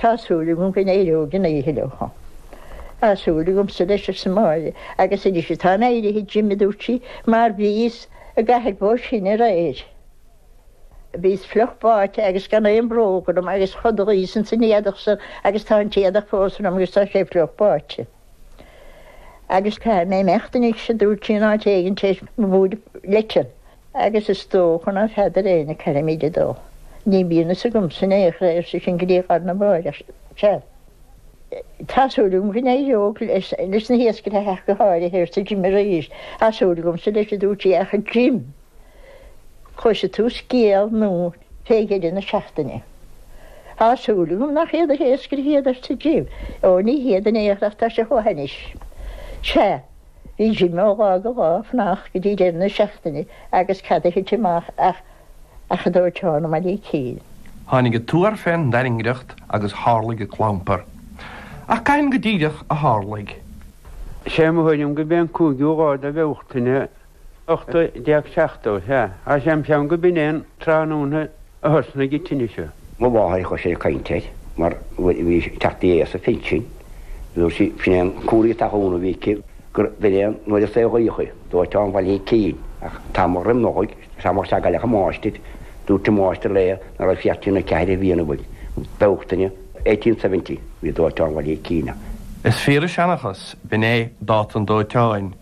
Tá súil agam go n-éireoidh an oíche leo. Tá súil agamsa leis, arsa Máire. Agus anois atáim éirithe, a Jim, a dúirt sí, mar bhíos i gCathair Bó Sine aréir. Bhíos fliuch báite agus gan aon bhróg orm agus chodlaíos ins an éadach san agus tá an t-éadach fós orm agus tá sé fliuch báite. Agus caithfidh mé imeacht anois, a dúirt sí, in áit éigin tar éis mo bhuairimh leitean. Agus is dócha ná feadair éinne ceirimíd a dó. Ní bíonn fhios agamsa in aon chor é, arsa sinn go liathgháir na mBráithre, ach seadh, tá súil agam go n-éireoidh leis na hiascairthe ach go háirithe, arsa Jim arís. Tá súil agamsa leis, a dúirt sé, ach a Jim, cloisfidh tú scéal nua fé dheireadh na seachtaine. Tá súil agam nach iad na hiascairthe iad, arsa Jim. Ó, ní hiad in aon chor ach tá sé chomh hainnis. Seadh! Bhí Jim ó lá go lá ag fanacht go dtí deireadh na seachtaine agus cad a thit amach ach an dóiteán i mBaile Ícín. Tháinig an tuar fén dtairngreacht agus tharlaigh an clampar. Ach cathain go díreach a tharlaigh? Is é mo thuairim gurb é an cúigiú lá de Bhealtaine 1870, sea, agus an ceann gurb in é an tráthnóna a thosnaigh an tine. Mo mháthair a chloisinn ag caint air mar nuair a bhí sí ag teacht in aois an phinsin dúirt sí, b'shin é an cúr iontach dhona a bhí aici, gur b'in é an uair a saolaíodh í, dóiteán Bhaile Ícín. Ach tamall roim Nollaig, is tamall seagaileach an máistir, dúirt an máistir léi ná raibh sí thart ar na ceithre bliana mar Bealtaine eighteen seventy bhí dóiteán Bhaile Ícín ann. Is fíor an seanchas, b'in é dáta an dóiteáin.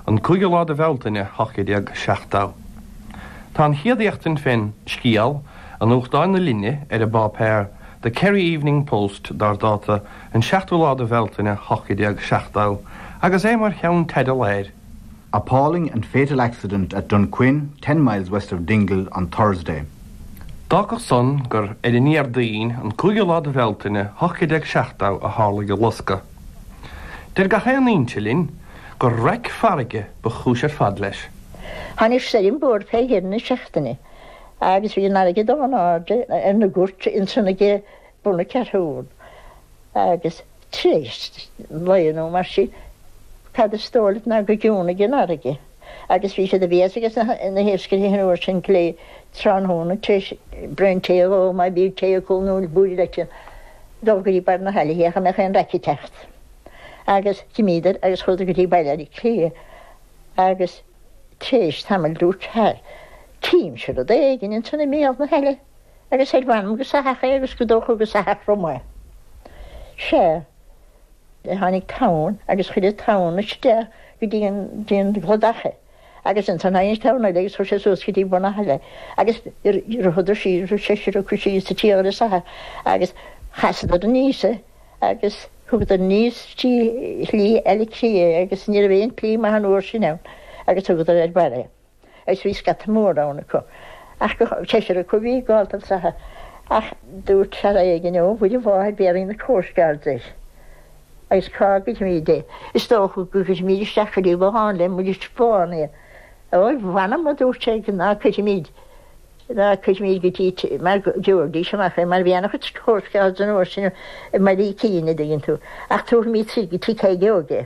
an cúigiú lá de Bhealtaine 1870. Tá an chéad éachtaint fén scéal i nuachtáin na linne ar an bpáipéar The Kerry Evening Post dár dáta an seachtú lá de Bhealtaine 1870 agus é mar cheannteideal air, Appalling and fatal accident at Dunquin, ten miles west of Dingle, on Thursday. D'fhágfadh san gur ar an nDéardaoin an cúigiú lá de Bhealtaine 1870 a tharlaigh an loscadh. Deir gach aon fhoinse linn gur raic farraige ba chúis ar fad leis. Tháinig stoirm mhór fé dheireadh na seachtaine agus bhí an fharraige ag dul in airde ar na goirt ansan ag bun na Ceathrún agus tréis lae nó mar sin cad is dóigh leat ná go gciúnaigh an fharraige. agus bhí sé de bhéas ages na hiascairthe an uair sin gach aon tráthnóna tar éis braon tae a dh'ól, má bhí tae acu nó búille leite, dul go dtí barr na haille féachaint an mbeadh aon raic ag teacht. Agus d'imíodar agus chuadar go dtí Baile Ícín agus tar éis tamaill dúirt fear, Címse rud éigin ansan i mbéal na haille agus ar mh'anam gur soitheach é agus gur dócha gur soitheach rum é. Sea. Tháinig tonn agus chuir an tonn isteach go dtí an dtí an gcladach é agus ansan tháinig an tonn eile agus chuir sé suas go dtí bun na haille agus chuadar síos bhí seisear acu síos sa tíogar is eadh agus chasadar aníos é agus thugadar aníos trí shlí eile trí é agus ní raibh aon tslí maith an uair sin ann agus thugadar ar barr é. Agus bhí scata mór ann acu, ach seisear acu a bhí ag gabháil don soitheach. Ach dúirt fear éigin, Ó, a Mhuire Mháthair, béarfaidh na coastguards air. Agus cá gcuirfimid é? Is dócha go gcuirfimid isteach go dtí bothán le Muiris Bán é. Ó, mh'anam, a dúirt sé, ná cuirfimid, ná cuirfimid go dtí, mar go dtabharfaidís amach é, mar bhí an-chuid coastguards an uair sin i mBaile Ícín, an dtuigeann tú. Ach tabharfaimid go tigh Thaidhg Óig é.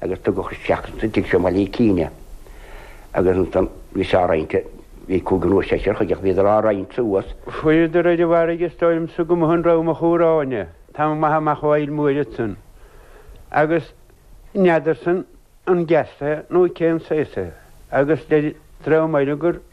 agus tugadh isteach san tigh seo i mBaile Ícín é agus ansan bhíothas á roinnt, bhí cúigear nó seisear chuige ach bhíodar á roinnt suas. Fuaireadar ar an bhfarraige is dóigh liomsa go mb'shin raibh mo chúr áine, tamall maith amach ón bhFaill Mhóir ansan, agus n'fheadarsa an gas é nó cén saghas é agus deir dream eile gur.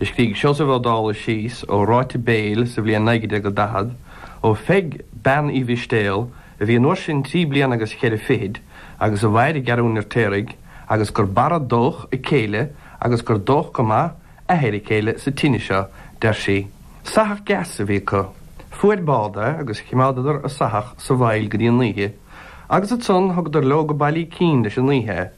Scrígh Seosamh Ó Dálaigh síos ó ráite béil sa bhliain 1940, ó Pheig Bean Uí Mhistéal, a bhí an uair sin trí bliana agus cheithre fichid, agus a mhair i gCeathrú an Fheirtéaraigh, agus gur barradhódh a céile, agus gur dódh go maith, athair a céile, sa tine seo, deir sí. Soitheach gas a bhí acu. Fuair bád é agus chimeádadar an soitheach sa bhfaill go dtí an oíche, agus ansan thugadar leó go Baile Ícín leis an oíche é,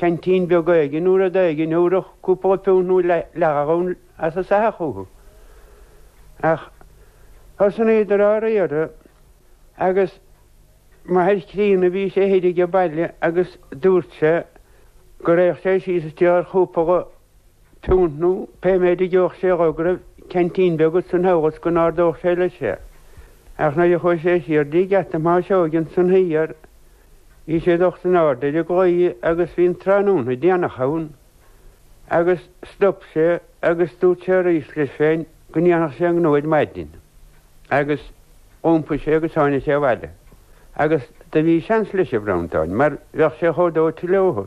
ceaintín beag éigin nó rud éigin a thabharfadh cúpla piúnt nó leathghalún as an soitheach chucu. Ach thosnaíodar á riar agus m'athair críonna bhí sé thoir ag an baile agus dúirt sé go raghadh sé síos ag triall ar chúpla piúnt nó pé méid a gheobhadh sé dhó go raibh ceaintín beag aige ina thomhas go n-ardódh sé leis é. Ach nuair a chuaigh sé siar dtí geata Thomáis Óig ansan thiar, Bhí sé dulta in airde ag an gclaí agus bhí an tráthnóna déanach ann agus stop sé agus dúirt sé arís leis féin go ndéanfadh sé an gnó ar maidin. Agus d'iompaigh sé agus tháinig sé abhaile. Agus do bhí seans leis, a Bhreandáin, mar bheadh sé chomh dóite leothu.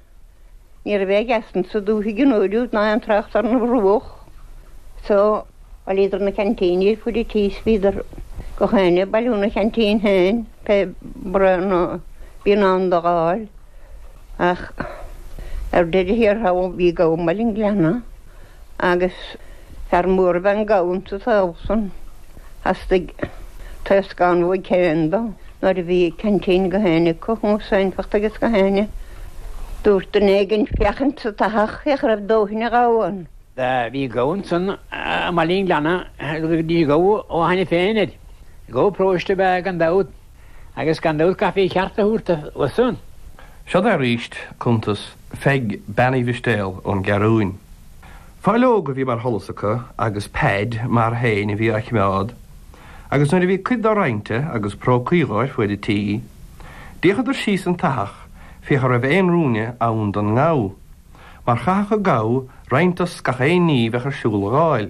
Ní raibh gas insa dúthaigh an oiread ná aon trácht ar an bhruach so, bhailíodar na ceaintíní ar fuaid an tí is bhíodar gach éinne ag bailiú na ceaintín féin pé braon a bíonn ann do dh'fháil. Ach ar deireadh thiar thall bhí gabha i mBaile an Ghleanna. agus fear mór ab ea an gabha insa tsaol san. Theastaigh taoscán uaidh féin dó. Nuair a bhí a cheaintín ag gach éinne acu, comharsanacht agus gach éinne, dúirt duine éigin féachaint sa tsoitheach féach an raibh dóthain an ghabhann. Bhí an gabha ansan i mBaile an Ghleanna agus ní gabha ó a hainne féin air. Gabha paróiste ab ea gan dabht. agus gan dabht caithfí a cheart a thabhairt dó san. Seo arís cuntas Pheig Bean Uí Mhistéal ón gCeathrúin. Fáideog a bhí mar sholas acu agus Peaid mar fhéinn a bhí á chimeád agus nuair a bhí cuid dá roinnte agus prócaí dhe ar fuaid an tí, d'fhéachadar síos sa tsoitheach féach an raibh aon ruainne ann don ngabha, mar chaithfeadh an gabha roinnt dos gach aon ní bheadh ar siúl a dh'fháil.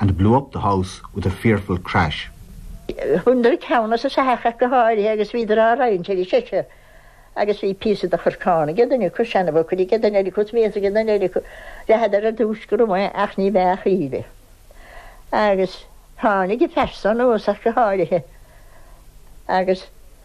and blew up the house with a fearful crash. Bhaineadar an ceann as an soitheach ach go háirithe agus bhíodar á roinnt ar a seisear agus bhí píosa de chorcán ag an duine acu, seanabhócaire ag an duine eile acu is mias ag an duine eile acu. Ritheadar ar dtús go raibh mé ach ní bheadh aoinne. Agus tháinig a phearsa anuas ach go háirithe agus.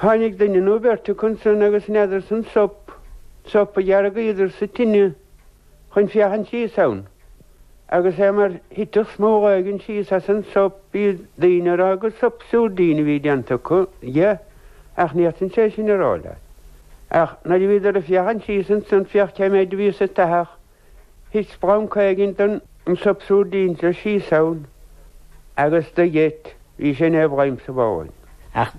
Tháinig duine nó beirt acu ansan agus dheineadar san sop, sop a dheargaíodar sa tine chun féachaint síos ann, agus é mar thitfeadh smóg éigin síos as an sop, b'iad daoine a raibh gur sop siúirdín a bhí déanta acu dhe, ach níor san sé sin a raibh leat. Ach nuair a bhíodar ag féachaint síos ansan féach cé méid a bhí sa tsoitheach, thit splanc éigin den sop siúirdín seo síos ann agus do gheit, bhí sé ina bhladhm sa bhothán. Ach